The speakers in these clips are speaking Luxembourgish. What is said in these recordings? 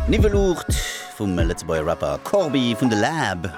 Niwweluucht vum Lëtzebuerger Rapper Corbi vun de Läb.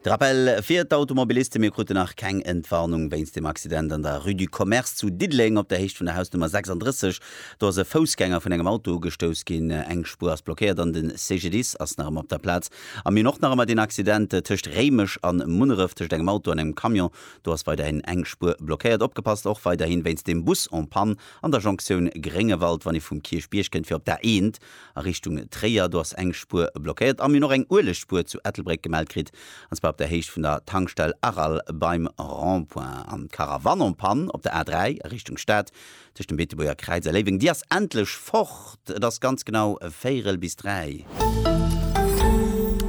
De Rappell fir d'Automobilisten, Mir kruten nach keng Entwarnung wéinst dem Accident an der Rue du Commerce zu Diddeleng op der Héicht vun der Hausnummer 36. Do ass e Foussgänger vun engem Auto ugestouss ginn. Eng Spuer ass blockéiert an de CGDIS ass nach ëmmer op der Plaz. A mir hunn och nach ëmmer deen Accident tëscht Réimech an Munneref tëscht engem Auto an engem Camion. Do ass weiderhin eng Spuer blockéiert. Opgepasst och weiderhi wéinst dem Bus en panne. An der Jonktioun Gréngewald, wann ee vum Kierchbierg kënnt fir op d'A1 a Richtung Tréier, do ass eng Spuer blockéiert a mir hunn och eng Uelegspuer zu Ettelbréck gemellt kritt, an zwar op der Héicht vun der Tankstell Aral beim Rond-point. An d'Caravannenpanne op der A3 a Richtung Stad tëscht dem Beetebuerger Kräiz a Léiweng, déi ass endlech fort, et ass ganz genau véierel bis dräi.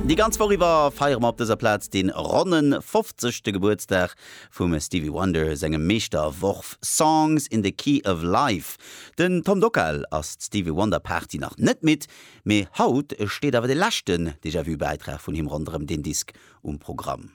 Déi ganz Woch iwwer feiere mer op dëser Plaz dee ronne fofzegste Gebuertsdag Vum Stevie Wonder sengem Meeschterworf Songs in the Key of Life. Den Tom Dockal ass d'Stevie Wonder Party nach net midd, mee haut steet awer de leschten Déjà Vu Bäitrag vun him ronderëm deen Disk um Programm.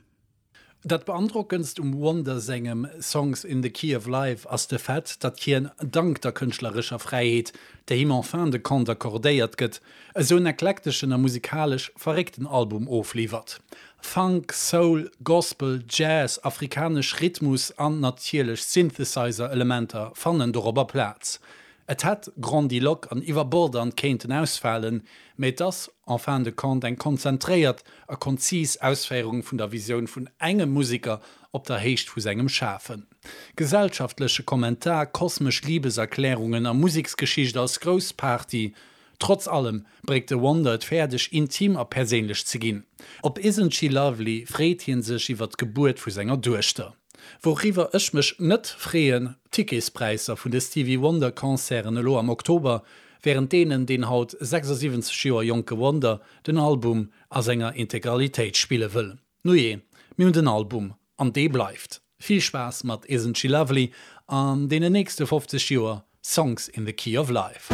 Dat beandrockendst um Wonder sengem Songs in the Key of Life ass de Fait, datt hien, dank der kënschtlerescher Fräiheet, déi him en fin de compte accordéiert gëtt, esou en eklekteschen a musikalesch verréckten Album ofliwwert. Funk, Soul, Gospel, Jazz, afrikanesch Rhythmus an natierlech Synthesizer-Elementer fannen dorobber Plaz. Et hätt grandiloque an iwwerbordant kéinten ausfalen, mee et ass en fin de compte eng konzentréiert a konzis Ausféierung vun der Visioun vun engem Musiker op der Héicht vu sengem Schafen. Gesellschaftleche Kommentar, kosmesch Liebeserklärungen a Museksgeschicht als grouss Party Trotz allem bréckt de Wonder et fäerdeg, intim a perséinlech ze ginn. Op Isn't She Lovely freet hie sech iwwer d'Gebuert vu senger Duechter. Wouriwwer ech mech net freeën, D'Ticketspräisser vun de Stevie Wonder Concerten elo am Oktober, wärend deenen deen haut 76 Joer jonke Wonder den Album a senger Integralitéit spille wëll. Nujee, mir hunn den Album, an dee bleift. Vill Spaass mat Isn't She Lovely an deenen nächste 50 Joer Songs in the Key of Life.